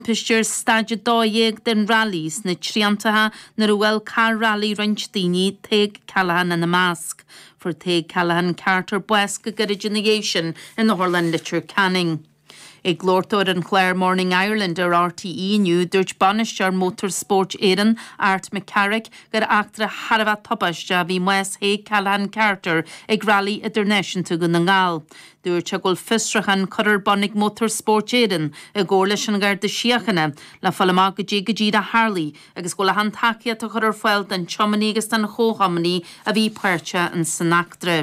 Pictiúr, Stáid 12 den Railí sna Triantaithe nuair a bhuail carr railí roinnt daoine, Tadhg Callaghan ina measc. Fuair Tadhg Callaghan Carter bás go gairid ina dhiaidh sin in Otharlann Leitir Ceanainn. Ag labhairt dó ar an chlár Morning Ireland ar RTÉ inniu, dúirt Bainisteoir Motor Sport Éireann, Art Mac Carraic, gur eachtra thar a bheith tubaisteach a bhí i mbás Thaidhg Callaghan Carter ag Railí Idirnáisiúnta Dhún na nGall. Dúirt sé go bhfuil fiosruchán curtha ar bun ag Motor Spóirt Éireann i gcomhar leis an Gharda Síochána le fáil amach goidé go díreach a tharlaigh agus go bhfuil achan tacaíocht á cur ar fáil don tiománaí agus don chomhthiománaí a bhí páirteach ins san eachtra.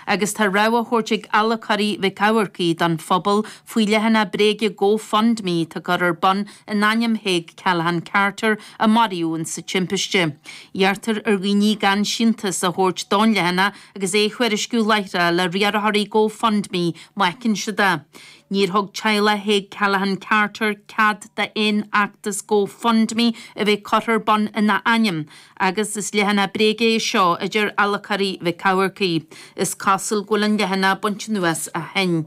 Agus tá rabhadh á thabhairt ag adhlacóirí Mhic Eamharcaigh don phobal faoi leathanach bréige Go Fund Me atá curtha ar bun in ainm Thaidhg Callaghan Carter a maraíodh ins sa timpiste. Iarrtar ar dhaoine gan síntiús a thabhairt don leathanach agus é a thuairisciú láithreach le riarthóirí GoFundMe má fheiceann siad é. Níor thug teaghlach Thaidhg Callaghan Carter cead d'aon fheachtas GoFundMe a bheith curtha ar bun ina ainm agus is leathanach bréige é seo a deir adhlacóirí Mhic Eamharcaigh. Is cosúil go bhfuil an leathanach bainte anuas ó shin.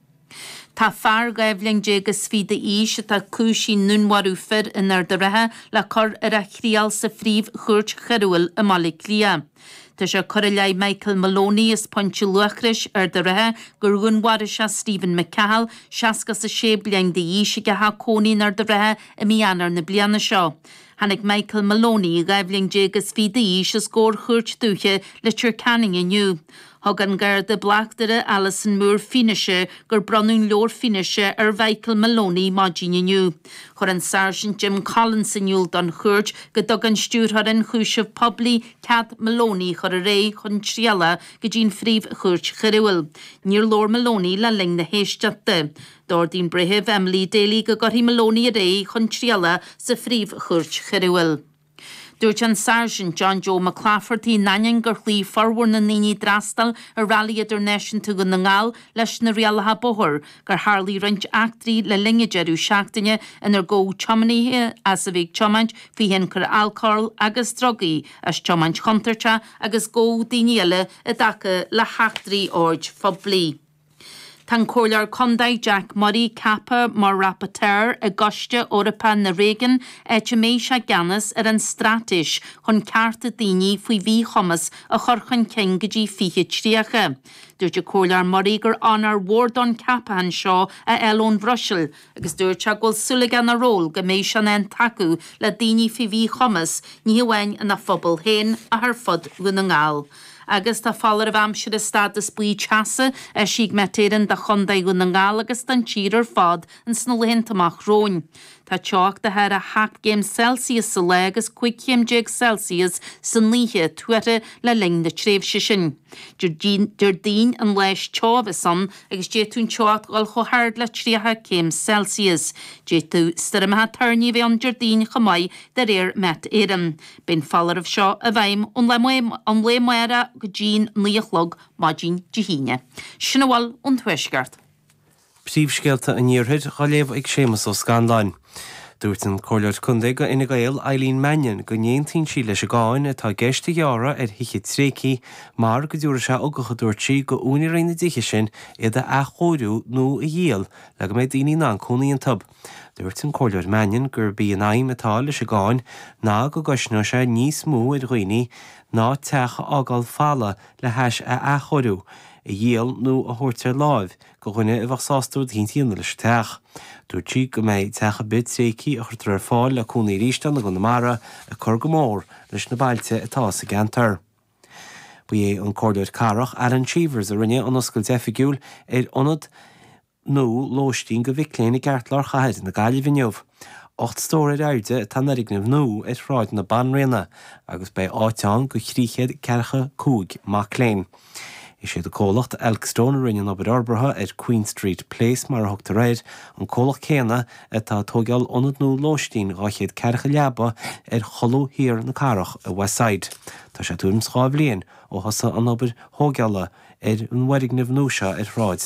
Tá fear dhá bhliain déag is fichead d'aois atá cúisithe i ndúnmharú fir in Ard a' Rátha le cur ar a thriail sa Phríomh Chúirt Choiriúil i mBaile Cliath. Tá sé curtha i leith Michael Maloney as Pointe Luachrais, Ard a' Rátha, gur dhúnmharaigh sé Stephen McCahill, 60 is 6 bliain d'aois, ag a theach cónaí in Ard a' Rátha i mí Eanáir na bliana seo. Tháinig Michael Maloney, dhá bhliain déag is fichead d'aois, os gcomhair Chúirt Dúiche Leitir Ceanainn inniu. Thug an Garda Bleachtaire Alison Moore fianaise gur bronnadh an leabhar fianaise ar Mhichael Maloney maidin inniu. Chuir an Sáirsint Jim Collins in iúl don chúirt go dtug an Stiúrthóir Ionchúiseamh Poiblí cead Maloney a chur ar aghaidh chun trialach go dtí an Phríomh-Chúirt Choiriúil. Níor labhair Maloney le linn na héisteachta. D'ordaigh an Breitheamh Emily Daly go gcuirfí Maloney ar aghaidh chun trialach sa Phríomh-Chúirt Choiriúil. Dúirt an Sáirsint John Joe McClafferty in ainneoin gur chloígh formhór na ndaoine a d'fhreastail ar Rally Idirnáisiúnta Dhún na nGall leis na rialacha bóthair, gur tharlaigh roinnt eachtraí le linn an deireadh seachtaine inar gabhadh tiománaithe as a bheith ag tiomáint faoi thionchar alcóil agus drugaí, as tiomáint chontúirteach agus gabhadh daoine eile i dtaca le heachtraí oird phoiblí. Tá an Comhairleoir Contae Jack Murray ceaptha mar Rapporteur i gCoiste Eorpach na Réigiún áit a mbeidh sé i gceannas ar an straitéis chun cearta daoine faoi mhíchumas a chur chun cinn go dtí 2030. Dúirt an Comhairleoir Murray gur onóir mhór dó an ceapachán seo a fháil ón Bhruiséil, agus dúirt sé go bhfuil súil aige ina ról go mbeidh sé in ann tacú le daoine faoi mhíchumas, ní hamháin ina phobal féin ach ar fud Dhún na nGall. Agus tá foláireamh aimsire stádas buí teasa eisithe ag Met Éireann do Chontae Dhún na nGall agus don tír ar fad in sna laethanta amach romhainn. Tá teocht de thar 7 gcéim Celsius sa lá agus 15 chéim Celsius san oíche tuartha le linn na tréimhse sin. Déardaoin an lá is teo a bheas ann agus d'fhéadfadh an teocht dhul chomh hard le 30 céim Celsius. D'fhéadfadh stoirmeacha toirní a bheith ann Déardaoin chomh maith, de réir Met Éireann. Beidh an foláireamh seo i bhfeidhm ón mheán lae amárach go dtí'n naoi a chlog maidin Dé hAoine. Sin a bhfuil ón Tuaisceart. Príomhscéalta an Iarthair dhá léamh ag Séamas Ó Scanláin. Dúirt an Comhairleoir Contae go Fhine Gael Eileen Mannion go n-aontaíonn sí leis an gcáin atá i gceist a ghearradh ar thithe tréigthí mar go dtabharfaidh sé ugach a dúirt sí go úinéirí na dtithe sin iad a athchóiriú nó a dhíol le go mbeidh daoine in ann cónaí iontu. Dúirt an Comhairleoir Mannion gurb í an aidhm atá leis an gcáin ná go gcosnóidh sé níos mó ar dhaoine ná teach a fhágáil folamh le hais a athchóiriú, a dhíol nó a thabhairt ar láimh, go dhuine a bheadh sásta rud eicínt a dhéanamh leis an teach. Dúirt sí go mbeidh teach ar bith tréigthí a chuirtear ar fáil le cónaí arís ann i gConamara ag cur go mór leis na bailte atá sa gceantar. Ba é an Comhairleoir Cathrach Alan Cheevers a rinne an oscailt oifigiúil ar ionad nua lóistín go mhic léinn i gceartlár chathair na Gaillimhe inniu. Ocht stór ar airde atá an fhoirgneamh nua ar Shráid na Banríona agus beidh áit ann go thrí chéad ceathracha cúig mac léinn. Is iad comhlacht Elkstone a rinne an obair fhorbartha ar Queen Street Place, mar a thugtar air, an comhlacht céanna atá ag tóigeáil ionad nua lóistín 200 ceathracha leaba ar cholbha thiar na cathrach i Westside. Tá sé tuairim is dhá bhliain ó thosaigh an obair thóigeála ar an bhfoirgneamh nua seo ar Shráid